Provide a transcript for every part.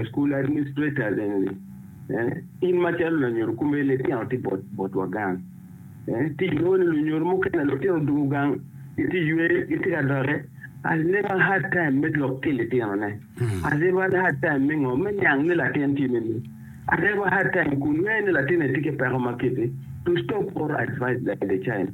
School administrators eni ni, eh, in macalo lanyodo kome litino tye bot botwa gang. Eh, ti inongo ni lunyodo mukene litino odoko gang, giti ywe, giti ka dote. As never hard time me lok ki litino ne. As never hard time me ngo, me niang ni latin ti me ni. As never hard time kun ngeye ni latin eni ti ki peko ma kiti. To stop or advise like the child.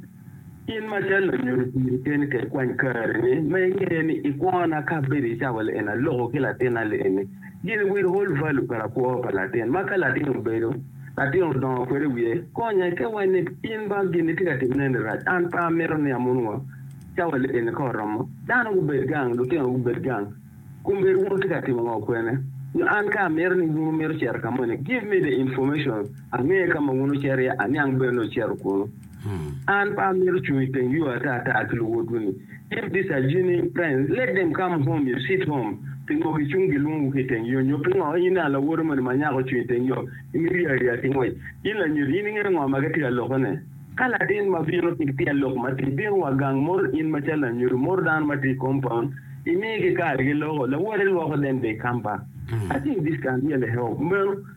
In ma cal lanyodo piri keni ka ikwany karini ma ingeyo ni i kwona ka bedo i cawa lieni aloko ki latinna lieni gin will hold value pa lakwo pa latin ma ka latin obedo latin odongo kwede wiye konye ke wa ni in ba gin itye ka timine ni rac an pe amito ni amon wa cawa lieni ka oromo dano gubed gang lutino gubed gang kun bedo wun wutye ka timo ngo kwene nyo an ka amito ni wun wumito cito ka moni give me the information ange ka ma wun wucito iye aniang bene ni wucito kunu. An pe amito cung i teng yo ata ata ki luwotwu-ni. If these are genuine friends, let them come home, you sit home. Pingo gicung gilwongo ki i teng yo? Nyo pingo in aa lawote moni ma nyako ocung i teng yo, imito rii ariya ki ngwec? In lanyodo, in ingeyo ngo ma gitye ka lokone? Ka latin ma bino ki tyen lok matir bino wa gang moto in macalo lanyodo moto dano ma tye i compound, imigi kare giloko, lawote lwoko then they come back. I think this can really help.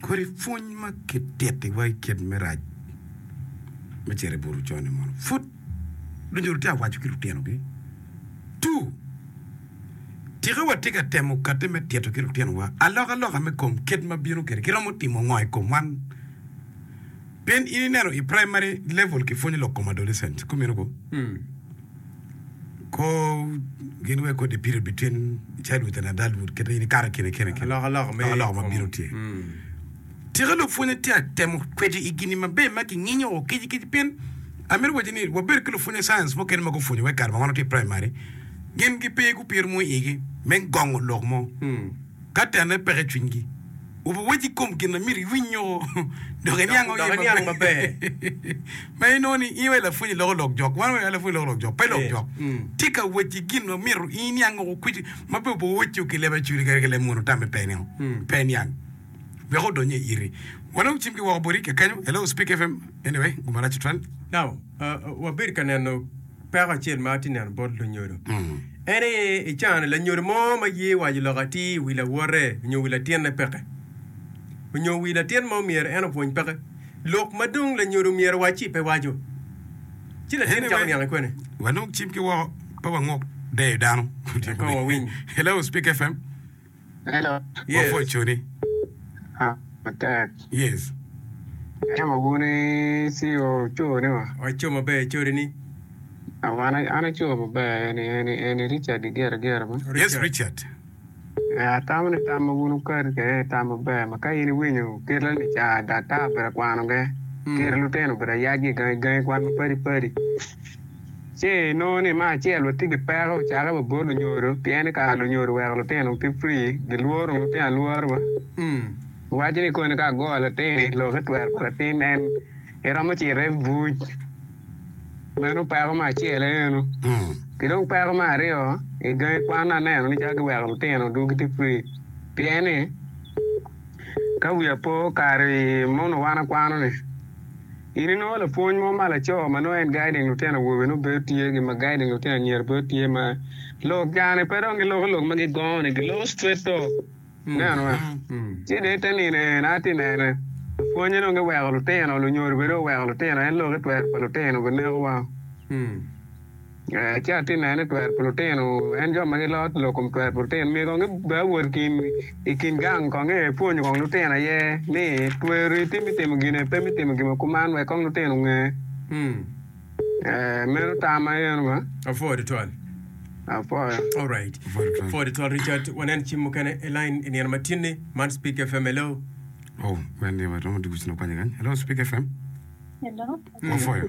Kodi pwony ma kitittiwa i kit me rac me cito i buto con-ni mono pud lunyodo tye ka waco ki lutinogi? Two, Tika watye ka temo kati me tito ki lutinowa alokaloka me kom kit ma bino kwede? Kiromo timo ngo i kom man? Pien in ineno i praimari levul kipwonyo lok kom adolescent, kumeno ko. Kor gin wek kodi pire bityen i childhood and adulthood kit ma in ikato kine kine kine. Alokaloka me Alokaloka ma kom. bino tye. Mm. Tika lupwony atyer temo kwedi i gini maber ma kinginyo o kic kic pien amito waci ni wabedo ki lupwony science mukene ma gupwonyo wek kare ma wan watye i primary gin gipe gupiro mo i igi me gongo lok mo Mm. ka tenne peke i cwinygi. Wuwac i kom gin ma myero iwinyo dok iniang maber. Ma inongo ni in aye lapwony iloko lok jok. Wan weng lapwony loko lok jok, pe lok jok. Tye ka wec ki gin ma myero in iniang woko kwiti ma pe opo wecco ki leb acuri kadi ki leb munu tamme pe nio. Pe iniang. Wek odony i iri. Wan dong wacim ki woko boti kekenyo. Hello, Speak FM. Anyway, gumarac tutwal. Now, wabed ka neno. Peko acel ma atye neno bot lunyodo en ni i cane lanyodo mo ma ye waco lok atir i wi lawote onyo wi latinne peke onyo wi latin mo myero en opwony peke lok ma dong lanyodo omyero owaci pe waco ci latin Anyway, cako niang i kwene. Walog cim ki woko pe wangok deyo dano. Kong wawiny. Hello, Speak FM. Hello. Yes. Wapwod cuni. Ha, matek. Yes. Ento ma wun i CEO co ni wa. Wa co maber code ni. Ah, wan an aco maber, eni, eni, eni Richard Gigera Gera mo. Yes, Richard. Eh, atamo ni tam ma wun wukati kede ni tam maber, ma ka in iwinyo kite ni ca daktar obedo akwano ge, kite lutino obedo ayacgi gangi gangi kwan mapadi padi. Ce i nongo ni ma acel wa tye ki peko cake wa bot lunyodo pien ni kara lunyodo weko lutino ki free gi lworo nongo tyen alwora wa umm iwaco ni koni ka agoyo latini lok i twero pa latin en i romo cito i buc meno peko ma acel aye eno ki dong peko ma aryo i gangi kwan ni aneno ni calo gi weko lutino dwogo gitye free pien ni ka wiya po kare mono wan akwano ni In inongo lapwony mo ma laco ma nongo en guiding lutino awobe nongo bedo tye gi ma guiding lutino anyira bedo tye ma lok gane pe dong giloko lok ma gigongo ni giloko straight talk ineno wa ci dong ite nino ee na ati nene lapwonye dong giweko lutino lunyodo bene dong oweko lutino en lok itwero pa lutino bene neko wa. Ci atinne ni twer pulutin-nu, en jo ma gilor dilo kom twer pulutin, myero kong gibed awot i kin gang kong ea epwonyo kong lutino aye ni tweri iti me timo gin epe me timo gimo kuman wek kong lutino onge. Meno tam ma eno ma. Apwoyo tutwal. Apwoyo. Alright. Apwoyo tutwal Richard. Wanen cim mukene i line i nino ma tin ni. Man Speak FM. Hello. Oh, man ni ma romo dwogo cino kwanya kany. Hello Speak FM. Hello. Apwoyo.